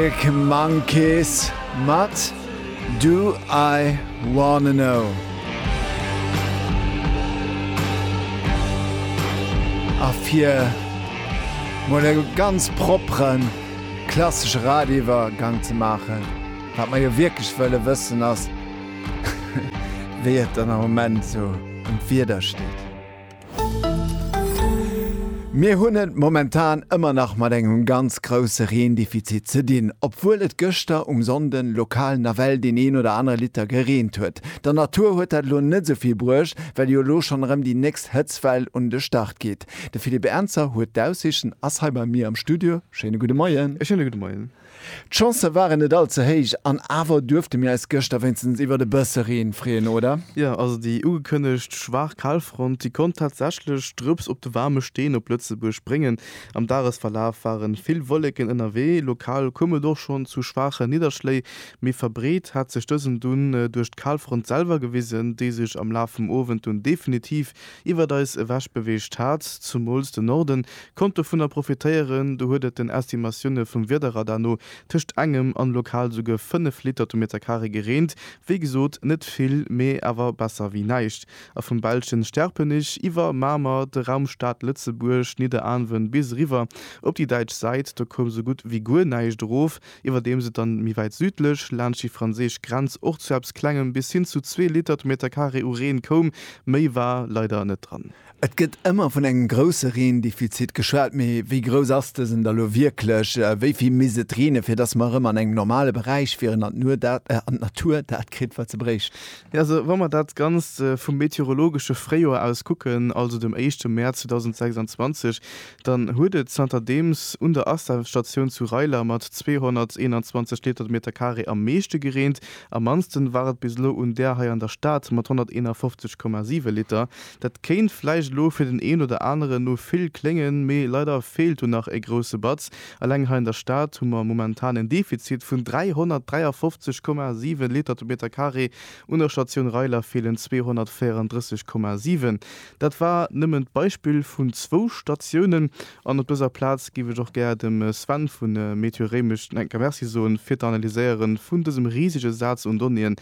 Arctic Monkeys mat Do I Wanna Know. A fir mol e ganz proppere klassesche Radiouwergank ze maachen, wat mer jo wierklech wëlle wëssen ass, wéi et dann am Moment esou ëm d'Wieder steet. Mir hunn et momentan ëmmer nach mat engem ganz grousse Reendefizit ze dinn, obwuel et gëschter um Sonnden lokal nawell deen een oder anere Liter gereent huet. Der Natur huet dat elo net esou vill bruecht, well jo elo schonn erëm déi nächst Hëtztwell un de Start geet. De Philippe Ernzer huet d'Aussiichten, ass hei bei mir am Studio. Schéine gudde Moien. E schéine gudde Moien. D'Chancë waren net all ze héich an awer duerfte mir eis gëschter wéinstens iwwert e bësse Reen freeën, oder? Jo, also déi ugekënnegt schwaach Kalfront, déi konnt tatsächlech Drëps op de waarme Steen op Lëtzebuerg bréngen. Am Dagesverlaf ware vill Wolleken ënnerwee, lokal koum et och schonn zu schwaache Nidderschléi, méi verbreet hat sech dësen dunn duerch d'Kalfront selwer gewisen, déi sech am Laf vum Owend dunn definitiv iwwert eis ewech beweegt hat. Zumools de Norden konnt dovunner profitéieren, do huet et den Estimatioune vum Wiederradar no tëscht engem an lokal souguer 5 Liter to Meterkaree gereent. Wéi gesot, net vill, mee awer besser wéi näischt. A vum belschen Sterpenich iwwer Mamer, de Raum Stad Lëtzebuerg, Nidderaanwen bis eriwwer op déi däitsch Säit, do koum sou gutt wéi guer näischt erof. iwwerdeems et dann méi wäit südlech, laanscht déi franséisch Grenz, och zu eppes Klengem, bis hin zu zwee Liter de Meterkaree u Reen koum. Méi war leider net dran. Et gëtt ëmmer vun engem grousse Reendefizit geschwat, mee wéi grouss ass dësen da lo wierklech? Wéi vill misst et reenen, fir dass mer erëm an engem normale Beräich wieren an d'Natur dat kritt, wat se bréicht? Jo, also wa mer dat Ganzt vum meteorologesche Fréijoer aus kucken, also dem éischte Mäerz 2026, Dann huet et zanterdeems un der Astafstatioun zu Reiler mat 221 Liter de Meter Carré am meeschte gereent. Am mannsten war et bis elo un där hei an der Stad mat 151,7 Liter. Dat kéint vläicht elo fir den een oder aneren no vill kléngen, mee leider feelt do nach e grousse Batz. Eleng hei an der Stad hu mer momentan en Defizit vun 353,7 Liter de Meter Carré. Un der Statioun Reiler feelen 234,7. Dat war nëmmen d'Beispill vun zwou Statiounen. An op dëser Plaz géif ech och gär dem Sven vu Meteor Réimech den Enker Merci soen, fir d'Analyséiere vun dësem risege Saz un Donnéeë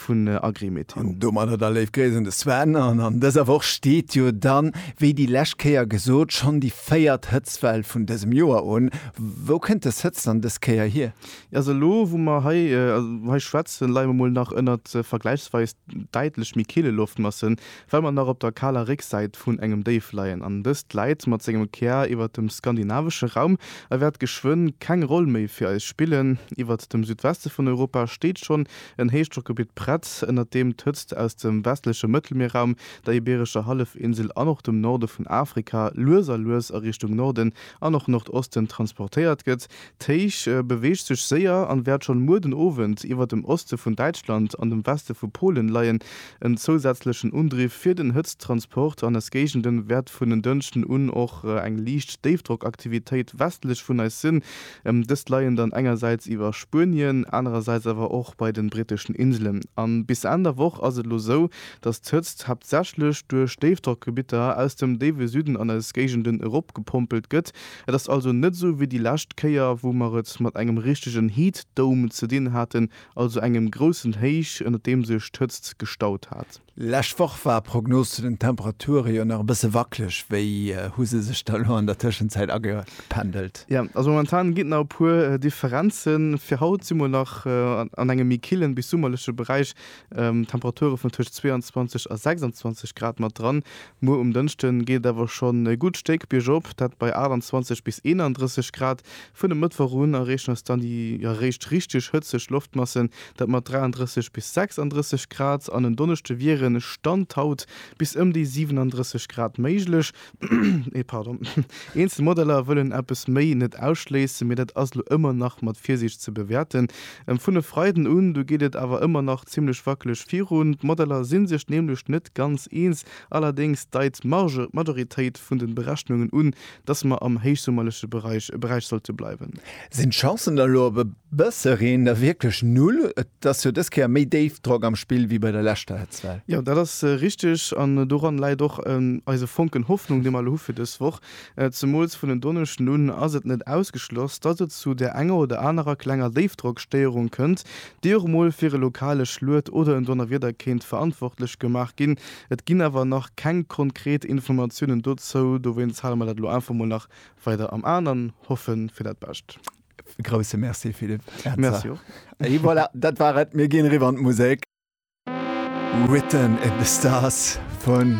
vun Agrimeteo. An domadder da léif Gréiss un de Sven. An an dëser Woch steet jo dann, wéi déi lescht Kéier gesot, schonn déi véiert Hëtztwell vun dësem Joer un. Wou kënnt dës Hëtzt dann dës Kéier hier? Jo, also elo, wou mer hei schwätzen, leie mer mol nach ënnert vergläichsweis däitlech méi kille Loftmassen, Well mer nach op der kaler Récksäit vun engem Déif leien an dëst gläit mat sengem Kär iwwert dem skandinavesche Raum a wäert geschwënn keng Roll méi fir eis spillen. Iwwert dem Südweste vun Europa steet schonn en Héichdrockgebitt prett, ënnert deem d'Hëtzt aus dem westleche Mëttelmierraum, der Ibeerescher Hallefinsel an och dem Norde vun Afrika lues a lues a Richtung Norden an och Nordosten transportéiert gëtt. D'Héich beweegt sech séier an wäert schonn muer den Owend iwwert dem Oste vun Däitschland an dem Weste vu Polen leien. En zousätzlechen Undriff fir den Hëtzttransport an eis Géigenden wäert vun en Dënschden un och eng liicht Déifdrockaktivitéit westlech vun eis sinn. Dëst leien dann engersäits iwwer Spuenien, anerersäits awer och bei den britteschen Inselen. An bis Enn der Woch ass et elo sou, dass d'Hëtzt haaptsächlech duerch Déifdrockgebitter aus dem déiwe Süden an eis Géigenden eropgepompelt gëtt. Et ass also net sou wéi déi lescht Kéier, wou mer et mat engem richtegen Heat Dome ze dinn haten, also engem groussen Héich, ënner deem sech d'Hëtzt gestaut hat. Lescht Woch war Prognos zu den Temperature jo nach e bësse wackeleg. Wéi hu se sech da lo an der Tëschenzäit agependelt? Jo, also momentan ginn et nach e puer Differenzen. Fir haut si mer nach an engem méi killen bis summerleche Beräich, Temperature vun tëscht 22 a 26 Grad mat dran. Muer um Dënschde geet et awer schonn e gutt Stéck biergop, dat bei 28 bis 31 Grad. Vun e Mëttwoch un erreechen eis dann déi jo eréischt richteg hëtzeg Loftmassen, dat mat 33 bis 36 Grad, an en Donneschde wiere Stand haut bis ëm déi 37 Grad méiglech. Eenzel Modeller wëllen eppes méi net ausschléissen, mee dat ass elo ëmmer nach mat Virsiicht ze bewäerten. Vun e Freiden un du geet et awer ëmmer nach zimmlech wackeleg virun. D'Modeller si sech nämlech net ganz eens, allerdéngs deit d'Majoritéit vun de Berechnungen un, dass mer am héichsummerleche Beräich e Beräich sollte bleiwen. Sinn d'Chancen da lo op e bësse Reen da wierklech null? Et ass jo dës Kéier méi Déifdrock am Spill wéi bei der leschter Hëtztwell. Jo, dat ass richteg an doran läit och eise Fonken Hoffnung, dee mer elo hu fir dës Woch. Zemools vun en Donneschden un ass et net ausgeschloss, dass et zu där enger oder anerer klenger Déifdrockstéierung kënnt, déi och mol fir e lokale Schluet oder en Donnerwieder kéint verantwortlech gemaach ginn. Et ginn awer nach keng konkret Informatiounen dozou, dowéinst hale mer dat elo einfach mol nach weider am An an hoffe fir dat Bescht. E grousse Merci Philippe Etzer. Merci och. Et voilà, dat war et, mir ginn eriwwer an d'Musek. Written in the Stars vun.